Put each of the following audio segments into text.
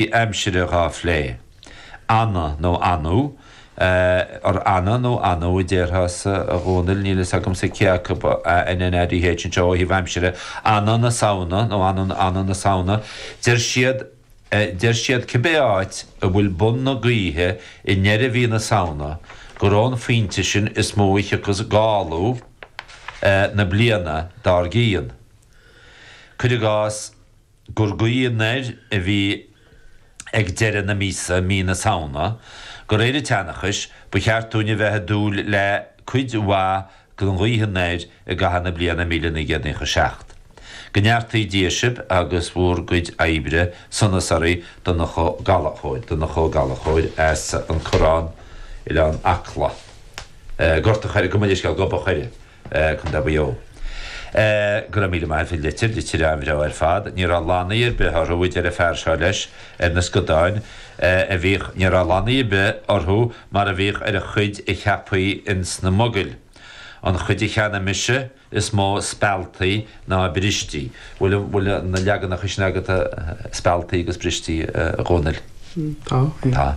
i. aimsire dhá phlé. Ana nó anadh, or ana nó anadh a déarfása a Dhomhnaill, níl fhios agamsa cé acu ba ea A N A D H anseo ó thaobh aimsire, ana na Samhna nó anadh na ana na Samhna, deir siad, deir siad cibé áit a bhfuil bun na gaoithe i ndeireadh mhí na Samhna gur ón phointe sin is mó a thiocfas gála na bliana dár gcionn, cuir i gcás. gur gaoth anoir a bhí ag deireadh na míosa, Mí na Samhna, de réir an tseanchais ba cheart dúinn a bheith ag dúil le cuid mhaith den ghaoth anoir i gcaitheamh na bliana míle naoi gcéad naocha seacht. Go neartaí Dia sibh agus bhur gcuid oibre sonas oraibh Donncha Ó Gallachóir, Donncha Ó Gallachóir as An Corrán, Oileán Acla. Gort an Choire, gabh mo leithscéal, Gob an Choire. Contae Mhaigh Eo. Go raibh míle maith as an litir, litir an-bhreá ar fad. Ní raibh lannaí ar bith orthu, a deir an fear seo leis, ar na scadáin a bhíodh, ní raibh lannaí ar bith orthu mar a bhíodh ar an chuid a cheapfaí ins na mogaill. An chuid a cheannaigh mise, is mó spealtaí ná brístí. Bhfuil na leaganacha sin agat, spealtaí agus brístí, a Dhomhnaill? Tá. Tá.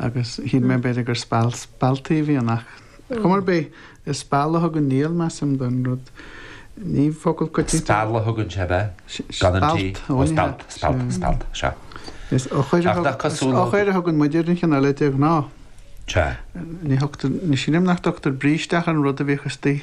Agus shíl mé b'fhéidir gur speal spealtaí a bhí ann ach ar chuma ar bith, is speal a thugann Niall, measaim, don rud. Ní focal coitianta. Speal a thugann sé ab ea? Gan an T? Spealt, ó ní hea. Spealt, spealt, spealt, sea. Is eochair a thugann, is eochair a thugann muid ar an chineál eile de ghnáth. Sea. Ní thugtar, ní shílim nach dtugtar bríste ach ar an rud a bhíodh istigh.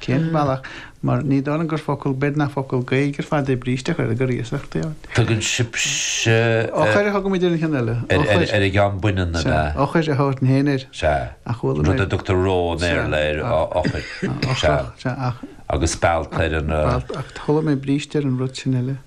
Cén bealach? Mar ní dóigh liom gur focal, b'fhéidir nach focal Gaeilge ar fad é bríste ach gur, gur iasacht é ort. Tugann sibhse. Eochair a thugaimid ar an cheann eile. Eochair. Ar an gceann baineann ab ea? Sea. Eochair a thabharfainn féin air. Sea. Ach chuala mé. An rud a dtugtar roe i mBéarla air, eochair. Sea. Eochair. Sea. Ach. Agus spealt ar an. Spealt. Ach chuala mé bríste ar an rud sin eile.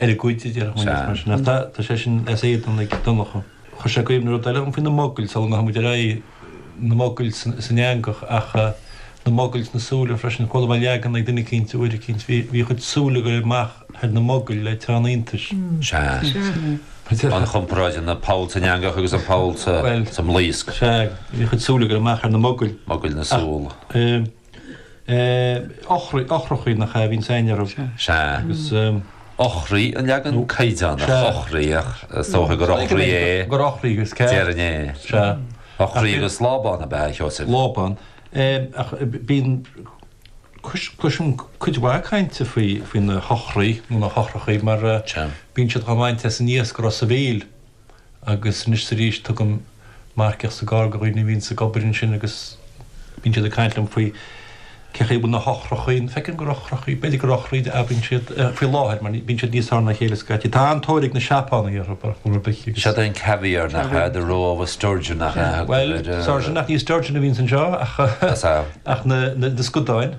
ar a gcuid, a déarfadh mise, mar sin. Ach tá sé sin as éadan ag Donncha. Chuir sé i gcuimhne rud eile dhom faoi na mogaill, sula ngabhaimid ar aghaidh, na mogaill san eangach ach na mogaill sna súile freisin. Chuala mé leagan ag duine eicínt uair eicínt, bhí a chuid súl ag éirí amach ar na mogaill le teann iontais. Sea. An chomparáid idir an poll san eangach agus an poll sa mblaosc. Sea. Bhí a chuid súl ag éirí amach ar na mogaill. Mogaill na súl. eochrachaí nach ea a bhíonns againn orthu. Sea. Agus. eochraí an leagan caighdeánach. Sea. eochraí ach is dócha gur eochraí é. Gur eochraí is ceart. Déarfainn é. Sea. Eochraí agus lábán ab ea, a Sheosaimh? Lábán. Ach bíonn, cloisim cuid mhaith cainte faoi na heochraí nó na heochrachaí mar bíonn siad dhá bhaint as an iasc i Ros a' Mhíl. agus anois arís tugaim marcaíocht sa gcarr do dhaoine a bhíonn ag obair ansin agus bíonn siad ag caint liom faoi cén chaoi a bhfuil na heochrachaí, ní fheiceann gur eochrachaí, b'fhéidir gur eochraí a fhaigheann siad faoi láthair mar bíonn siad níos fearr ná a chéile scaití. Tá an-tóir ag na Seapánaigh orthu ar chaoi ar bith agus. Sórt caviar nach ea, the roe of a sturgeon nach ea a thugtar air. Bhuel, sturgeon ach ní sturgeon a bhíonns anseo ach ach na scudáin.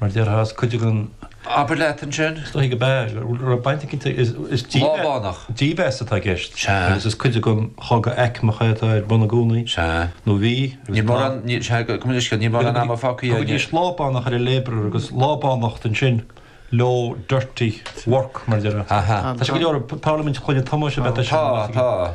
mar déarfas cuid againn. Abair leat ansin. Is dóigh ab ea go raibh baint aici is dímheas atá i gceist agus is cuid den chogadh aicmeach é atá ar bun i gcónaí nó bhí agus tá. Níl mórán ama fágtha aige. Thugaidís lábánach ar an labourer agus lábánacht ansin leo, dirty work mar a déarfá. Tá sé go leor i bparlaimint Chloinne Tomáis, I bet tá sé. Tá, tá.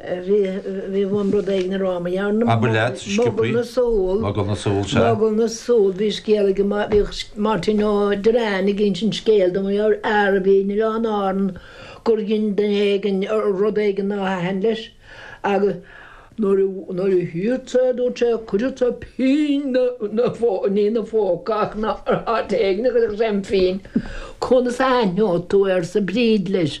Bhí uaim rud éigin a rá, má dhearna. Abair leat, Skippy. Mogall na súl. Mogall na súl, sea. Mogall na súl. Bhí scéal ag, bhíodh Máirtín Ó Direáin ag insint scéil dom ar fhear a bhí in Oileán Árann gur dhein duine éigin rud éigin nár thaitin leis agus nuair a, nuair a shíl sé, dúirt sé, chuirfeadh sé pínn na, na, ní ina phóca ach ina, áit éigin a chuirfeadh sé an phínn. Conas a aithneoidh tú, arsa Bríd leis.